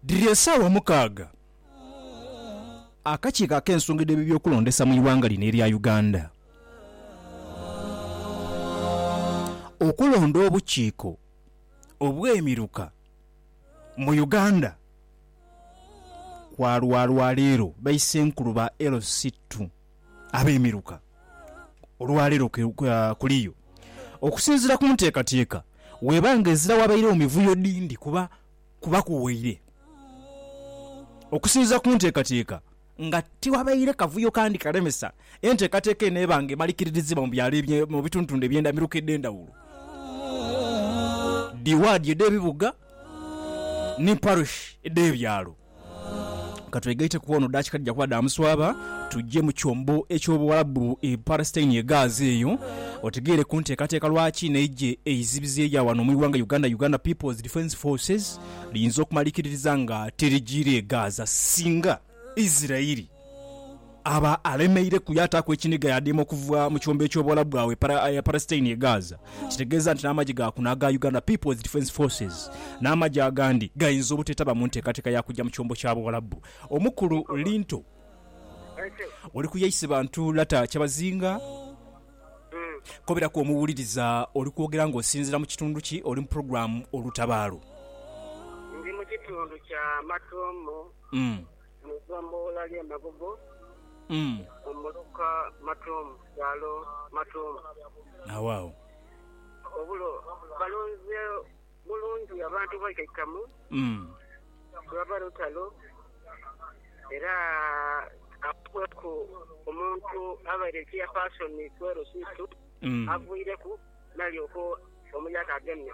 Dhiri esaawa mukaaga. Akakiiko ak'ensonga edh'ebibyokulondesa mu ighanga lino erya Uganda okulonda obukiiko obw'emiruka mu Uganda kwalwalwa leero baise nkulu ba LC ii. ab'emiruka olwaleero kuliyo okusinziira ku nteekateeka weeba nga ezira wabairewo mivuyo dhindi kuba kubaku waire okusinziira ku nteekateeka nga tiwabaire kavuyo kandi kalemesa enteekateeka eno eba nga emarikiririzibwa mu byalo mu bitundutundu eby'endamiruka edh'endhawulo dhi waadi edh'ebibuga ni parish edh'ebyalo. Ka twegaite ku ono, daakika dhija kuba dha muswaba tuje mu kyombo eky'Obuwarabu e Palestine e Gaza eyo otegeere ku nteekateeka lwaki n'eigye eizibizi erya wano mu ighanga Uganda, Uganda People's Defence Forces, liyinza okumalikiririza nga tirigiire e Gaza singa Israel. aba alemeire ku yaataaku ekiniga yaadiima okuva mu kiwembo eky'obwola bwawe para, eh, Palestine ye Gaza. Kitegeeza nti n'amagye ga kuno aga Uganda People's Defence Forces n'amagye agandi gayinza obuteetaba mu nteekateeka ya kujja mu kiwembo kya Buwalabu. Omukulu Linto oli ku Yaise Bantu Lata Kyabazinga. Koberaku omuwuliriza oli kwogera ng'osinziira mu kitundu ki? Oli mu pulogulaamu Olutabaalo. Ndi mu kitundu kya Matomo. Mm. Mu igombolola ly'e Magogo mu muluka Matomu, kyalo Matomu. Agho agho. Obulo balonze bulungi abantu baikaikamu ku lwa balutalo, era abakweku omuntu abaire chairperson ku LC2 avwireku nalyoka omuyaka agemye.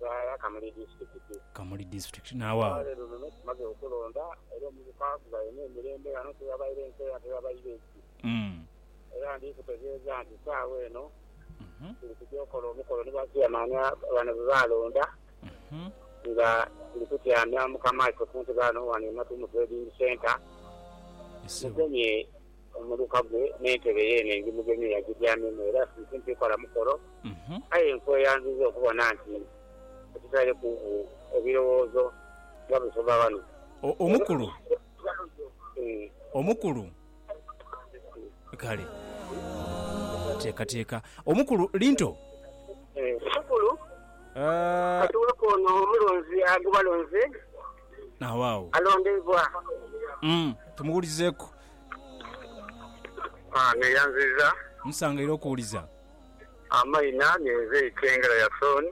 Zara Kamuli Disitulikiti. Kamuli Disitulikiti. Naawaawo. Olwaleero luno tumaze okulonda era omuvuka ghaine emirembe ghano tighabaire nkeera tighabaire ki era ndi kutegeeza nti saagha eno tuli kugya okola omukolo ni ba Chairman bano be baalonda nga tuli kutyamya Mukama ife ku ntebe ghano ghano e Matuumu Trading Centre. Mugemye Omuluka gwe n'entebe ye ene ndimugemye agityamemu era nsimpi kola mukolo. Aye nkweyanziza okubona nti otutaire ku ebirowoozo nga busoma ghano. Omukulu. Omukulu. Kale. Teekateeka. Omukulu. Linto. Omukulu. Katuweku ono omulonzi agubalonze. Agho agho. Alondeibwa. Tumuwulizeeku. Haa neyanziza. Nsanga era okuwuliza. Amaina ninze Itengera Yason.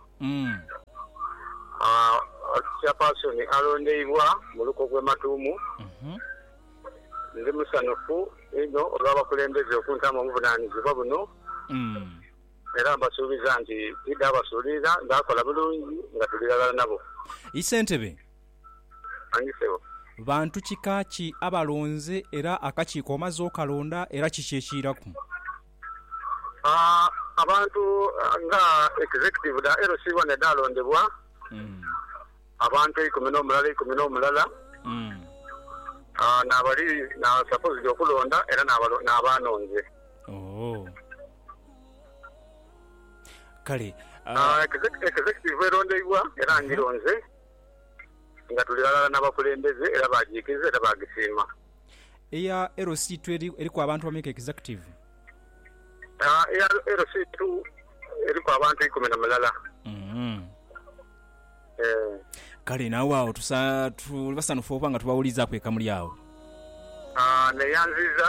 Haa Chairperson alondeibwa mu luko gwe Matuumu. Ndi musanhufu inho olwa bakulembeze okuntamu obuvunanizibwa buno era mbasuubiza nti tidha basuulirira ndhakola bulungi nga tuli ghalala nabo. Isentebe. Manyi sebo. Bantu kika ki abalonze era akakiiko omaze okalonda era kiki ekiiraku? Abantu nga Executive dha LC One edhaalondebwa, abantu eikumi n'omulala eikumi n'omulala n'abali supposed okulonda era n'abaanonze. Kale. Executive erondeibwa era ngironze. nga tuli ghalala n'abakulembeze era baagiikiriza era baagisiima. Eya LC two eriku abantu bameka Executive? Eya LC two eriku abantu ikumi na mulala. Kale naawe agho tuli basanhufu okuba nga tubawuliizaaku ekamuli agho. Neyanziza.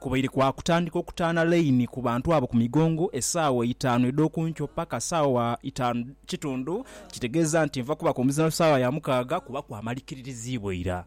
Kubaire kwa kutandika okutaana laini ku bantu abo ku migongo esaawa eitaanu edh'oku nkyo paka saawa itaanu kitundu, kitegeeza nti nva kubaku omuzindaalo saawa ya mukaaga kuba kwamarikiririziibwa ira.